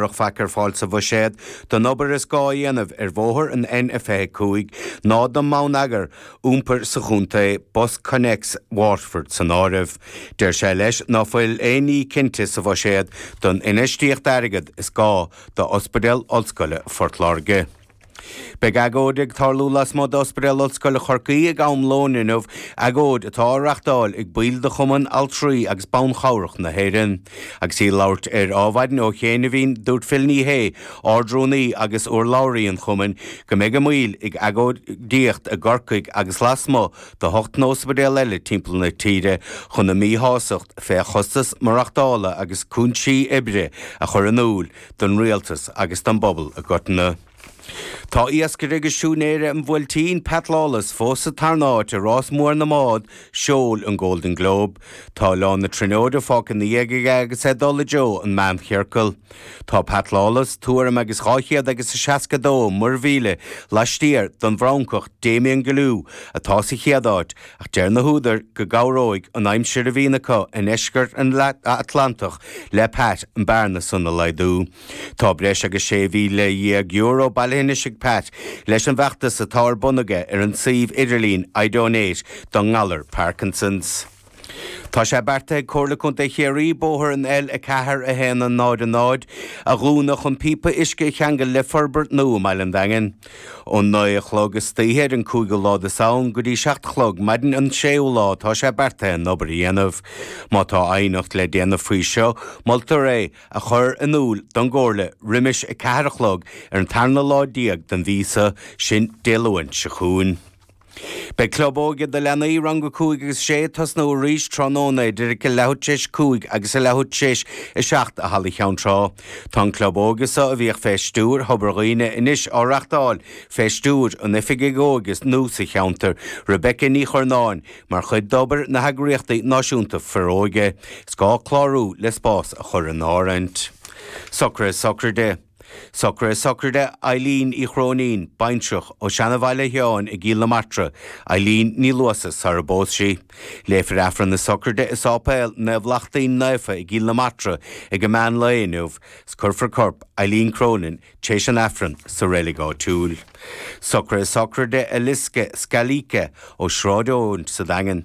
Bheadh faic ar fáil sa bhuiséad don obair is gá a dhéanamh ar bhóthar an N25 ná don mbonneagar iompair sa chontae, BusConnects Waterford san áireamh. Deir sé leis ná fuil aon ní cinnte sa bhuiséad don infheistíocht airgead is gá d'Ospidéal Ollscoile Phort Láirge. Beidh agóid ag tarlú lasmuigh d'Ospidéal Ollscoile Chorcaí ag am lóin inniu, agóid atá á reachtáil ag baill de Chumann Altraí agus Ban Chabhrach na hÉireann. Agus í ag labhairt ar Adhmhaidin ó chianaibhín, dúirt Phil Ní Sheaghdha, Ardrúnaí agus urlabhraí an Chumainn, go mbeidh a mbaill ag agóidíocht i gCorcaigh agus lasmuigh de hocht n-óspaidéal eile timpeall na tíre chun a míshásacht fé chostas maireachtála agus cúinsí oibre a chur in iúil. don Rialtas agus don bpobal i gcoitinne. Tá iascaire agus siúinéir an Bhuailtín, Pat Lawless, fós sa tarna áit i Rás Mór na mBád Seoil, an Golden Globe. Tá Oileán na Tríonóide fágtha ina dhiaidh aige agus é ag dul i dtreo an Mheánchiorcail. Tá Pat Lawless tuairim agus dhá chéad agus a seasca a dó muirmhíle laistiar don bhFrancach Damien Guillou atá sa chéad áit, ach deir na húdair go gcabhróidh an aimsir a bhíonn acu i ndeisceart an Atlantach le Pat an bearna san a laghdú. Tá breis agus €16,000 bailithe anois ag Pat leis an bhfeachtas atá ar bun aige ar an suíomh idirlín iDonate don ngalar Parkinsons. Tá sé beartaithe ag Comhairle Contae Chiarraí bóthar an L4100 a dhúnadh chun píopa uisce a cheangal le forbairt nua i mBaile an Daingin. Ón naoi a chlog istoíche ar an cúigiú lá de Samhain go dtí seacht a chlog maidin an séú lá atá sé beartaithe an obair a dhéanamh. Má tá aighneacht le déanamh faoi seo, moltar é a chur in iúl don gComhairle roimis a ceathair a chlog ar an tarna lá déag den mhí seo, sin Dé Luain seo chugainn. Beidh Club Óige do leanaí rang 5 agus 6 ag tosnú arís tráthnóna idir a leathuair tar éis a cúig agus a leathuair tar éis a seacht i Halla Cheann Trá. Tá an Club Óige so, a bhíodh fé stiúir Thobar Dhuibhne, anois á reachtáil fé stiúir an Oifigigh Óige nua sa cheantar, Rebecca Ní Churnáin, mar chuid d'obair na heagraíochtaí náisiúnta Foróige. Is gá clárú le spás a chur in áirithint. Socruithe Sochraide. Socruithe Sochraide Eileen Uí Chróinín, baintreach, ó Seanabhaile Sheáin i gCill na Martra, Eileen Ní Luasa, sara bpós sí. Léifear Aifreann na Sochraide i Sáipéal Naomh Lachtaín Naofa i gCill na Martra ag a meán lae inniu, 's cuirfear corp Eileen Cronin téis an Aifreann sa reilig áitiúil. Socruithe Sochraide Eliska Scalise, ó Sráid Eoin sa Daingean.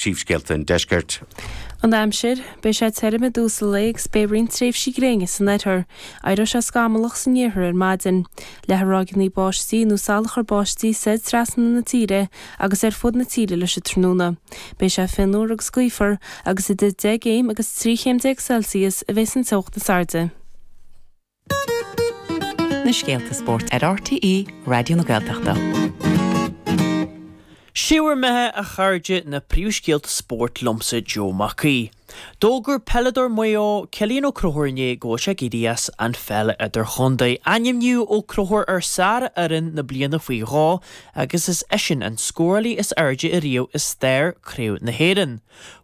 Príomhscéalta an Deiscirt. An aimsir, Beidh sé tirim i dtús an lae agus beidh roinnt tréimhsí gréine san oirthear. Éireoidh sé scamallach san iarthar ar maidin. Leathfaidh ráigíní báistí nó salachar báistí soir trasna na tíre agus ar fud na tíre leis an tráthnóna. Beidh sé fionnuar agus gaofar agus idir 10 gcéim agus 13 chéim Celsius a bheidh an teocht is airde. na scéalta spóirt ar RTÉ Raidió na Gaeltachta. Sé bhur mbeatha, a chairde, na príomhscéalta spóirt liomsa Joe Mac Aoidh. D'fhógair peileadóir Mhaigh Eo, Cillian Ó Crothúir inné go bhfuil sé ag éirí as an pheil idir-chondae. Ainmníodh Ó Crothúir ar shárfhoireann na bliana faoi dhó agus is eisean an scórálaí is airde ariamh i stair Craobh na hÉireann.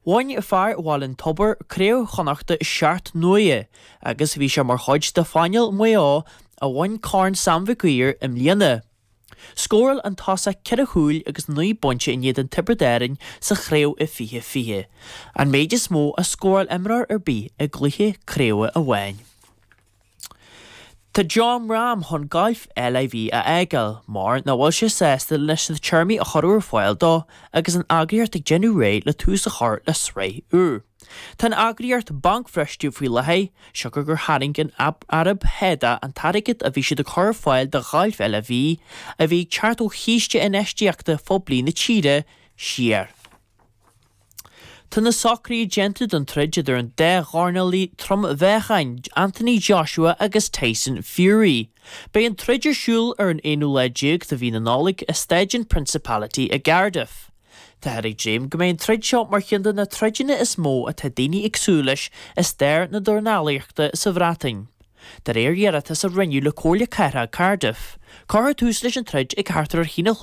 Bhain fear Bhaile an Tobair Craobh Chonnachta seacht n-uaire. agus bhí sé mar chuid de phainéal Mhaigh Eo a bhain Corn Sam Mhic Uidhir i mbliana. Scóráil an tosaí ceithre chúil agus naoi bpointe in éadan Tiobraid Árainn sa chraobh i 2020, an méid is mó a scóráil imreoir ar bith i gcluiche craoibhe amháin. Tá Jon Rahm chun gailf LIV a fhágáil mar nach bhfuil sé sásta leis na téarmaí a cuireadh ar fáil dó agus an eagraíocht ag déanamh réidh le tús a chur le sraith úr. Tá an eagraíocht bancbhriste faoi láthair, siocair gur tharraing an Araib Shádá an t-airgead a bhí siad ag cur ar fáil do ghailf LIV a bhí ag teacht ó chíste infheistíochta phoiblí na tíre siar. Tá na socruithe déanta don troid idir an dá dhornálaí trom-mheáchain, Anthony Joshua agus Tyson Fury. Beidh an troid ar siúl ar an aonú lá déag de mhí na Nollag i Staidiam Principality i gCardiff. Táthar ag dréim go mbeidh an troid seo mar cheann de na troideanna is mó atá daoine ag súil leis i stair na dornálaíochta sa Bhreatain. De réir iarratas a rinneadh le Comhairle Cathrach Cardiff, cuirfear tús leis an troid ag thart ar a haon a